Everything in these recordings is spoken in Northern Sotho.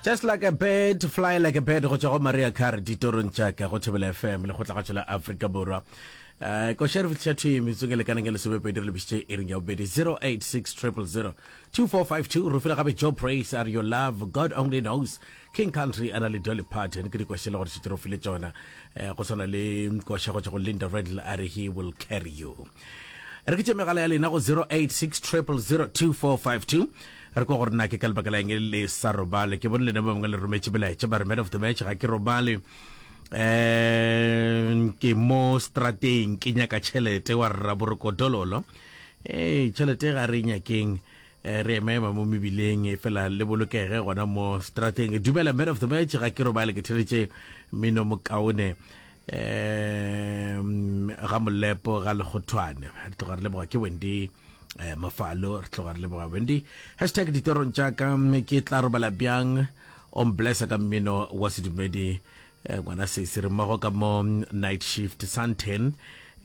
just like a bird fly like a bird go tšwa go maria car ditorong tšaka go thebela fm le go tla ga aforika borwa um ko sheriff tšhatho e metsong e lekaneng ya lesomepedi re lebisitše e reng ya bobedi 086 2452 re file gape joe praise are your love god only knows king country a na le dolly parton ke dikoše le gore šetse re file tsona um go tshwana le koša go tswa go linda redl a re he will carry you re ke tše megala ya lena go 0860002452 re kwa gore na ke ka lebaka la eng le sa robale ke bone lena ba bangwe le rometše belaetša ba re man of the match ga ke robale um ke mo strateng ke nyaka tšhelete wa rra borokodololo ee tšhelete ga re nyakeng eh, re emaema mo mebileng e fela le bolokege gona mo strateng dumela man of the match ga ke robale ke theletše mino mokaone um ga molepo ga lekgothwane re tloga re leboga ke wendy eh, mafalo re tloga re leboga wendy hashtag ditorong tša ka mme ke tla robala bjang o mblessa ka mmino wa sedumedi eh, ngwana seise re mmogo ka mo night shift santen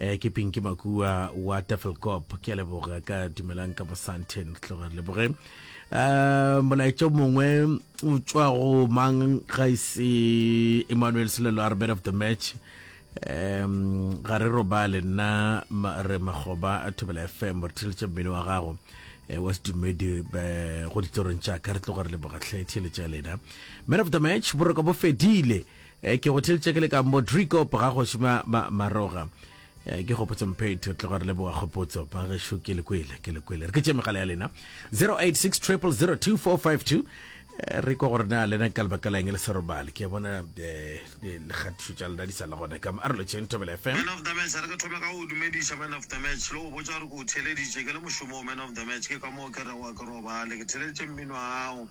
Eh, ke Pinky Makua wa Tafelkop. Ke a leboga ka dumelang ka Mosanthen. Tloga re leboge. Eh, molaetša o mongwe o tšwa go mang ga e se Emmanuel Selelo a re man of the match. Um, ga re robale nna ma- re makgoba a thobela fm re theletša mmele wa gago eh, wa sedumedi eh, go ditsorong tša ka re tloga re leboga tlhe theletša ya lena man of the match boroko bo fedile Eh, ke go theletše ke le ka mo Drikop ga go šima ma, maroga. Eh, ke gopotse mphethi o tloga re leboga kgopotso ba gešo ke le kwele ke le kwele re ke tše megala ya lena 086 002452 eh, re kwa gore na lena ka lebaka la eng le serobale ke bona eh, eh, lekgathišo tša lena di sa le gona ka arolotšeng tobela fm man of the match re ke thome ka go dumediša man of the match le go botsa gore ke o theleditše ke le mošomong man of the match ke ka moo ke rewa ke robale ke theleditše mmino ao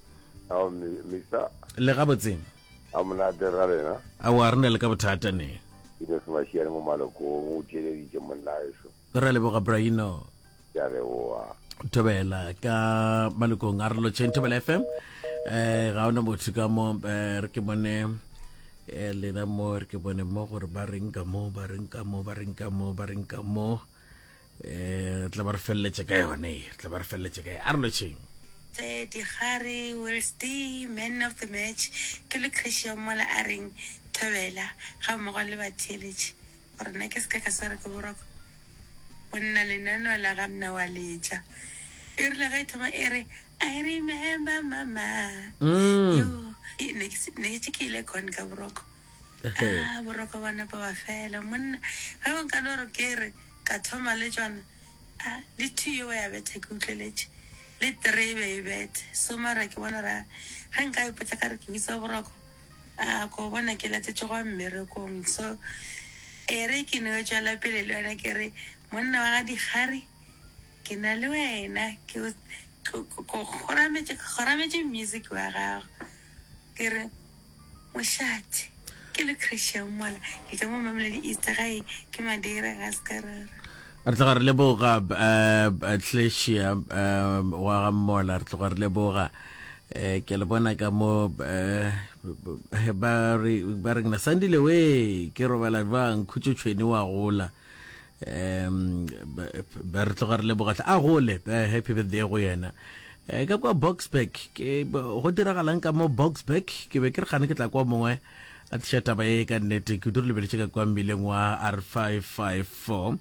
Ao Mister. Le ga botseng. A monate ra lena. A wa rena le ka bothata ne. Ke ne se mashiane mo malokong o theleditse monna eso. Ra leboga Braino. Ke a leboga. Thobela ka malokong a re lotšheng Thobela FM. Eh ga ona motho ka mo eh, re ke bone eh lena mo re ke bone mo gore ba reng ka mo ba reng ka mo ba reng ka mo ba reng ka mo. um tla ba re feleletse ka yone tla ba re feleletse ka a re lotšheng tse digare welsday man of the match ke le christian mola a reng thobela ga mmogo le batheeletše gore nna ke seka ka swara ke boroko go nna lenaneo la ga mna wa letša e rile ga e thoma e re i remember mama mm. ne ke ile con ka boroko Ah, boroko ba nepo ba fela monna ge o ka no re ke re ka thoma le tšona a le two yo ba ya betha ke utlweletše le three e be e bethe so mara ke bona ra ge nka ipotsa ka re ke bitsa boroko a ko bona ke latetse go mmerekong so e re ke no tswela pele le yona ke re monna wa ga dikgare ke na le wena ke o- ko- ko- ko- gorametse gorametse music wa gago Ke re, Mošate, ke le Christian mola, ke tšwa mo Mamelodi East, gae ke Madeira, ga se ka ra re. Re tloga re leboga Tlesia wa ga Mmola, re tloga re leboga. Ke a le bona ka mo ba re, ba re, Sandile wee, ke robala jwang, Khutšo Tšhweni wa gola. um ba re tloga re lebogatle a gole eh, happy birthday go yena eh, ka kwa boxburg ke go diragalang ka mo boxburg ke be ke re gane ke tla kwa mongwe a tliša taba e ka nnete ke dure lebeletše ka kwa mmileng wa r 554 um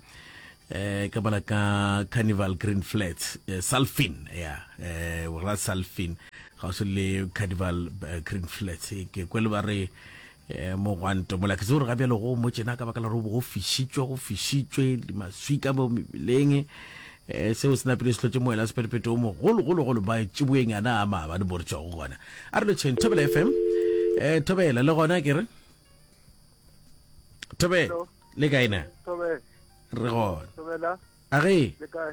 eh, ka bona ka carnival green flats eh, salfin ya eh, ra salfin ga o se le carnival eh, green flats ke kwele ba re E, mogwanto mola ke se gore ga bjalo go mo tšena ka baka la gore go fišitšwe go fišitšwe maswi ka mo mebeleng e, seo se napile se tlotše moela sepetepeto o mogologologolo ba tšiboeng yana a maabane mo re tšwa go gona a re lotšheng thobela fm um thobela le gona ke re thobela Hello. le kaena Thobela, re gona Thobela, a ge le kae?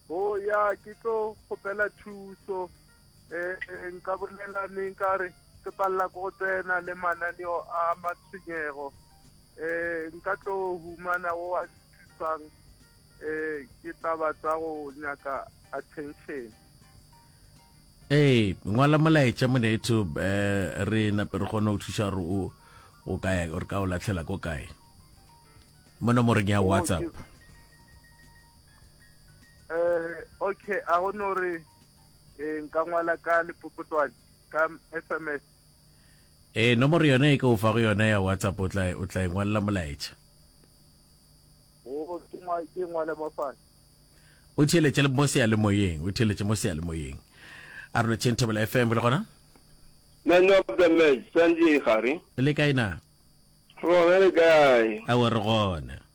O ya ke tlo kgopela thuso um nka bolela neng ka re ke palela ko go tsena le mananeo a matshwenyego um nka tlo humana o a thusang um ke taba tsa go nyaka attention ee ngwala molaetša monetho um eh, re nape re kgone go thuša gore o o kae gore ka o latlhela ko kae mo nomoreng ya whatsapp um okay a go no re eh, nka ngwala ka lepopotwane ka s m s ee nomoro yone e ke o fa go yone ya whatsapp o tla o tla e ngwalela molaetša ke ngwale mo fane o theletše mo seyalemoyeng o theletše mo seyalemoyeng a rona chain table fm le gona man of the match sanjay gare le kae na rona le kae a o re gona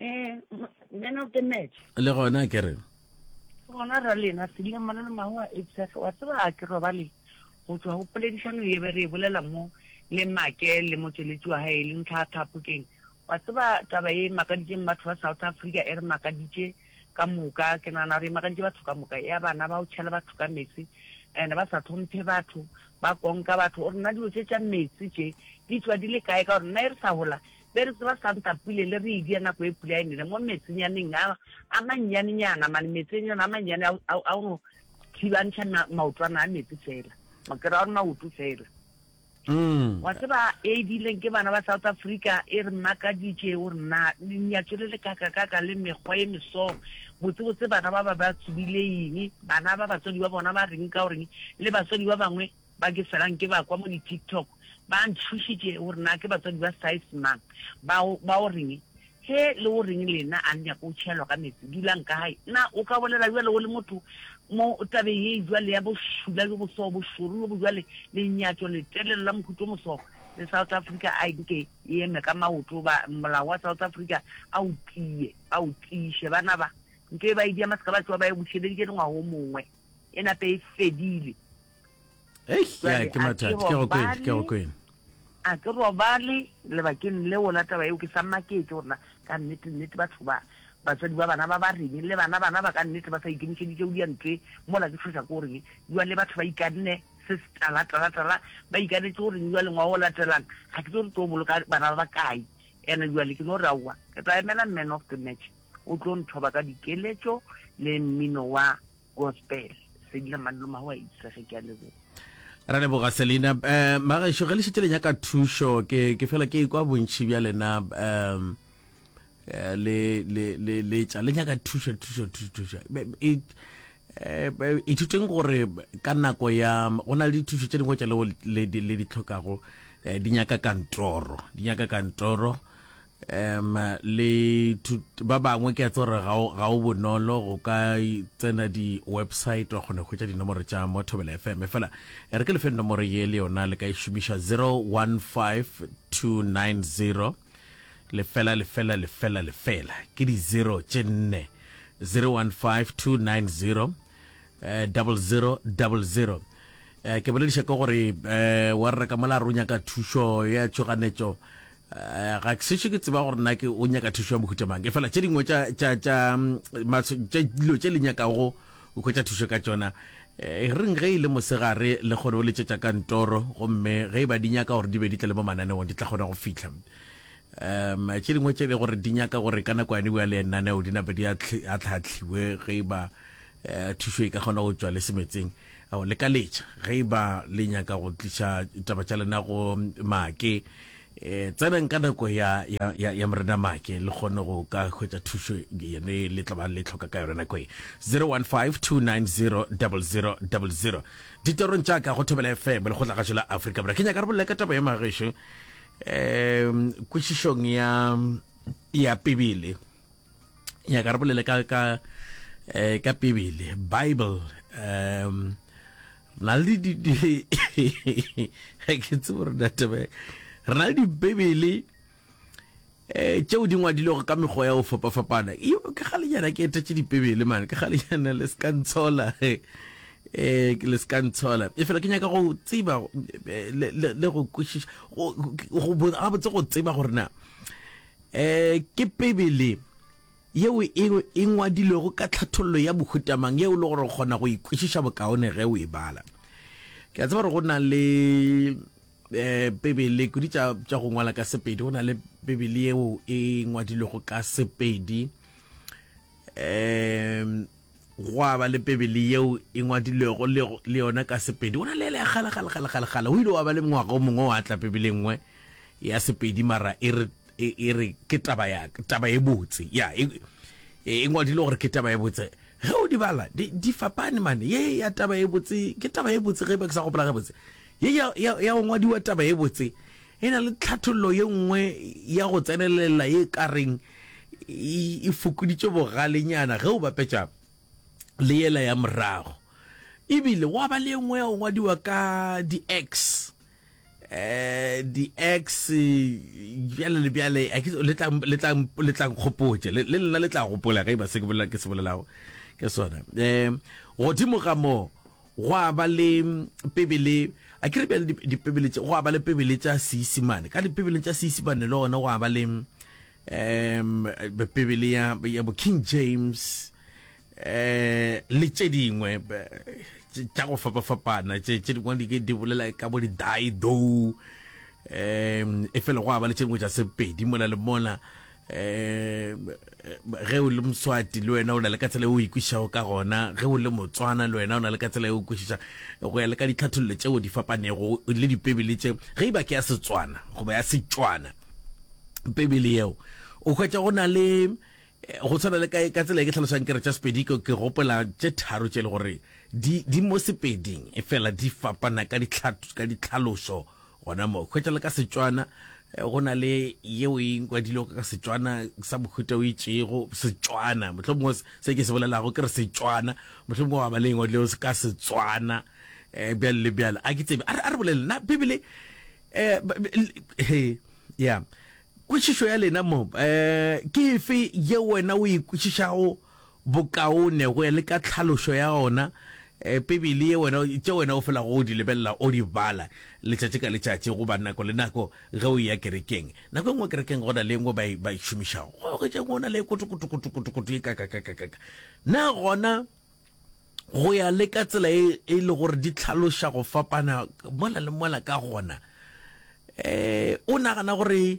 Eh, man of the match. Le gona ke re. Gona ra lena se dile mona le mahu a etsega wa tseba a ke robale go tswa go poledišano ye be re e bolela mo le make le motšweletši wa gae le ntlha thapokeng wa tseba taba e makaditseng batho ba south africa e re makaditše ka moka ke nagana gore e makaditše batho ka moka ya bana ba o tšhela batho ka metsi and ba sa tlhomphe batho ba konka batho gore nna dilo tse tša metsi tše di tswa di le kae ka gore nna e re sa gola Be re tseba santa pule le re edia nako e pula e nele mo metsenyaneng a, a mannyanenyana, mane metsenyana a mannyane a, a, a go thibantšha ma, maotwana a metsi fela, makera a maoto fela. Mm. Wa tseba e edileng ke bana ba South Africa e re makaditše o re na le nyatso le le kaka kaka le mekgwa e meso botse botse bana ba ba ba tsubile eng bana ba batswadi ba bona ba reng ka o reng le batswadi ba bangwe Ba ke felang ke ba kwa mo di TikTok ba ntšhošitše gore na ke batswadi ba size mang. Ba o, ba o reng? He, le o reng lena? A le nyake go tšhelwa ka meetse? Dulang ka gae. Na o ka bolela bjalo o le motho mo tabeng ye bjale ya bošula bjo boso, bošoro bjo bojwale, lenyatšo letelele la mohuto o moso, le South Africa a e nke e eme ka maoto goba molao wa South Africa a o tie, a o tiiše. Bana ba, ntwa e ba e diama seka ba tšowa ba e bušeleditše dingwaga o mongwe, e nape e fedile. a ke robale lebakeng leo la taba eo ke sa maketse gorena ka nnete nnete batho ba batswadi ba bana ba ba reng le bana bana ba ka nnete ba sa ikemišeditše go diantwe mola ke tshweša ko goreng jwa le batho ba ikanne se se tala tala tala ba ikanetse goreng jwa lengwa o latelang ga ke tlo re tlo boloka bana ba ba kae ene jwale ke no re aowa ke tla emela man of the match o tlo nthoba ka dikeletšo le mmino wa gospel selina maloma go a itsege ke a leboga ra leboga selina um eh, magaešo ge le šetse le nyaka thušo ke ke fela ke kwa bontšhi bja lena um eh, le le le le tša le nyaka thušo thušo thušo thušo e, eh, ithuteng gore ka nako ya go na le dithušo tše dingwe tša leo le di tlhokago di nyaka kantoro di nyaka kantoro Um, le ba bangwe ke a tse gore ga o bonolo go ka tsena di-website wa kgone go hwetša dinomoro tša mo thobela fm fela e re ke lefeng nomoro ye le yona le ka e šomiša 015290 lefela lefela lefela lefela ke di zero tše nne 015290 eh, double zero double zero eh, ke bolediša ke gore eh, wa reka mola a ronya ka thušo ya tšhoganetšo Eh, ga ke sešo ke tseba gore nna ke o nyaka thušo ya mohuta mang e fela tše dingwe dilo tše le nyakago o kgwetsa thušo ka tsona eh, reng ge e le mosegare le kgone o letšetša ka ntoro gomme ge e ba di nyaka gore di be di tle le mo mananeong di tla kgona go fitlha um tše dingwe tše le gore di nyaka gore ka nako yane bua le enaneo di nape di a tlhatlhiwe ge e ba eh, thušo e ka kgona go tswa le semetseng Ao, le ka letša, ge e ba le nyaka go tliša taba tša lena go Make. E, tseneng ka nako ya, ya, ya, ya Morena Make, le kgone go ka hwetša thušo yene le tla ba le tlhoka ka yona nako ye. 0152900000. Ditorong tša ka go Thobela FM, le kgotla gašo la Afrika Borwa. Ke nyaka re bolela ka taba ya magešu, um kwešišong ya, ya Pibele. ya ka re bolele ka ka eh, ka pebele bible um na le di ke tse gore databe re na le dibebele eh tšeo di ngwadilego ka mekgwa ya go fapafapana e ke ga lenyana ke etetše dipebele mane ke ga lenyana le seka ntshola eh le seka ntshola e fela ke nyaka go tseba eh, le go kwešiša go botse go tseba gore na E, ke Bibele yeo e, e ngwadilwego ka tlhathollo ya bohutamang yeo e le gore o kgona go ikwešiša bokaone ge o e bala. Ke a tseba gore go na le eh bibele kudi tša tša go ngwala ka sepedi go na le bibele yeo e ngwadilwego ka sepedi um gwa ba le pebele yeo e ngwadilwego le le yona ka sepedi go na le ele ya gale gale gale gale gale o ile wa ba le ngwaga o mongwe wa tla pebele nngwe ya sepedi mara e re e e re ke taba ya taba e botse ya e e e ngwadile gore ke taba e botse ge o di bala di di fapane mane ye ya taba e botse ke taba e botse ge e ba ke sa gopola ge botse ye ya ya ya go ngwadiwa taba e botse e na le tlhathollo ye nngwe ya go tsenelela ye ka reng e fokoditše bogalenyana ge o bapetša le yela ya morago ebile wa ba le engwe ya ngwadiwa ka di-x eh di-x bjale le bjale le tla nkgopotše le lena le tla gopola ge e ba se ke bolelago ke sona um godimo ga moo Gwa ba le Pebele, a ke re bjale di, Dipebele tše, gwa ba le Pebele tša Seisimane. Ka Dipebeleng tša Seisimane le gona gwa ba le um Pebele ya, ya bo King James um le tše dingwe tše- tša go fapafapana tše tše dingwe di ke di bolela ka bo di-die though um efela gwa ba le tše dingwe tša Sepedi mola le mola. um ge o le moswati le wena o na le ka tsela e o ikwešišago ka gona ge o le motswana le wena o na le ka tsela e o kwešiša go ya le ka ditlhathololo tšeo di fapanego le dipebele tše ge iba ke ya setswana goba ya setswana pebele yeo o hwetša go na le eh, go tshwana le ka ka tsela e ke tlhalosang ke re tša sepedi ke ke gopola tše tharo tše e le gore di di mo sepeding e fela di fapana ka ditlhato ka ditlhalošo Gona mo, hwetša le ka Setswana eh, go na le yeo e nkwadilego ka Setswana sa mohuta o itšego Setswana. Mohlho mongwe se ke se bolelago ke re Setswana, mohlho mongwe wa ba le engwadilego se ka Setswana eh, bjale le bjale. A ke tsebe, a re bolele na Bibele eh, he, ya kwešišo ya lena mo eh, ke efe ye wena o e kwešišago bokaone go ya le ka tlhalošo ya ona Bibele ye wena, tše wena o felago o di lebelela, o di bala letšatši ka letšatši goba nako le nako ge o eya kerekeng. Nako e nngwe kerekeng go na le e nngwe ba e, ba e šomišago, gwa oketša e nngwe, go na le e kotokotokotokotokoto ye kakakakakaka. Na gona go ya le ka tsela e e le gore di tlhaloša go fapana mola le mola ka gona, um o nagana gore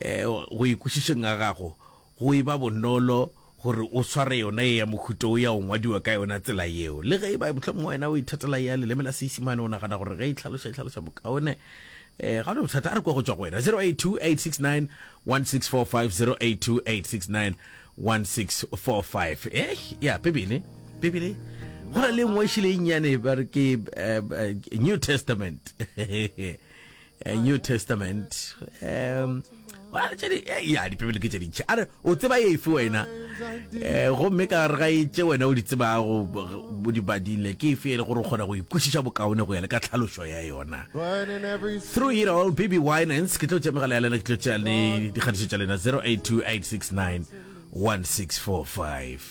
Go ikwešišeng ga gago, go e ba bonolo gore o sware yona ye ya mohuta wo ya go ngwadiwa ka yona tsela yeo. Le ge e ba mohlomongwe wena o ithatela ya leleme la Seisimane, o nagana gore ge e hlaloša e hlaloša bokaone, ga go na bothata. A re kwa go tšwa go wena. 0828691645, 0828691645. Ya Bibele, Bibele, go na le e nngwe e šele e nnyane ba re ke New Testament. Eh, new testament um eh, ya dipebele ke tše dintšhi a re o tseba efe wena eh, um gomme ka re ga e tše wena o di tsebago bo di badile ke efe e le gore o kgona go ikwešiša bokaone go ya le ka tlhalošo ya yona through it all baby winance ke tlo tšea megala ya lena ke tlo tšea le dikgatišo tša lena 0828691645